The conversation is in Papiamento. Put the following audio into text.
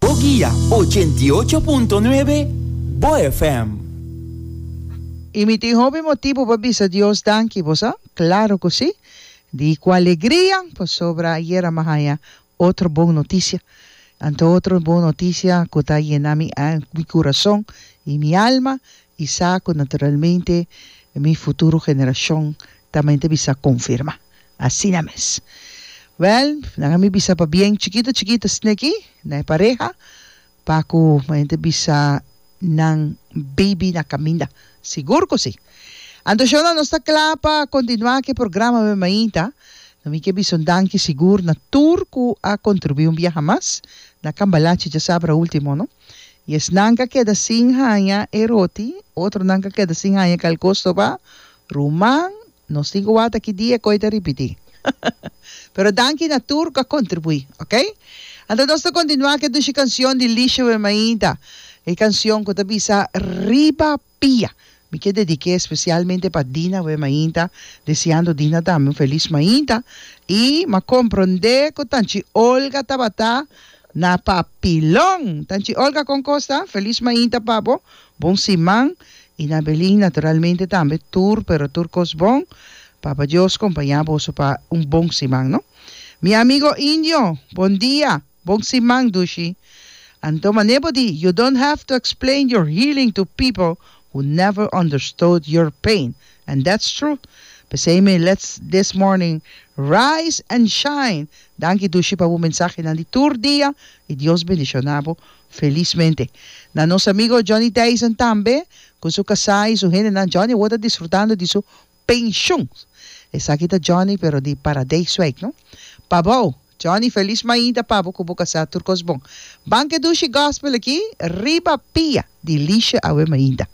Bo guia ochenta i ocho punto nuebe Bo FM. Y mi tin hopi motibu pa bisa Dios danki, bo sa? Claro cu si! Di cu alegria, pasobra ayer a mi a haña otro bon noticia. Anto otro bon noticia cu ta yena mi mi curazon y mi alma y sa cu naturalmente mi futuro generacion tambe ta bisa confirma. Asina mes. Wèl, nan a mi bisa pa bien chikito chikito sneki na e pareha, pa ku maña ta bisa nan beibi na kaminda. Sigur ku si. Anto shona nos ta kla pa kontinuá ku e programa men mainta. No mi ke bisa un danki sigur na tur ku a kontribuí un biaha mas na Cambalache djasabra último, no? I esnan ka keda sin haña e roti, otronan ka keda sin haña kalkos tobá, ruman No si cu wata ki dia coi ta ripiti. Pero danki na tur cu a contribui, ok? Anto nos ta continua cu e dushi cancion di Lisha Wemainda, e cancion cu ta bisa Riba Pia. Mi kier dedique especialmente pa Dina Wemainda, deseando Dina tambe un feliz Mainda y m'a compronde cu Tanchi Olga tabata na papilon. Tanchi Olga con cos ta? Feliz Mainda pa bo, bon siman I na Belin naturalmente tambe tur pero tur cos bon Papa Dios compaña boso pa un bon siman no Mi amigo Indio bon dia bon siman dushi Anto mane bo di you don't have to explain your healing to people who never understood your pain and that's true pesey me let's this morning rise and shine Danki dushi pa bo mensahenan di tur dia y Dios bendiciona bo Felismente, na nos amigo Johnny Dyson tambe cu su casá y su hendenan Johnny awor ta disfrutando di su pensioen. Esaki ta Johnny pero di Paradijswijk no. Pa bao, Johnny felis mainta pabo cu bo casá tur cos bon. Ban ke Dushi Gospel aki, riba pia di Liesje awe mainta.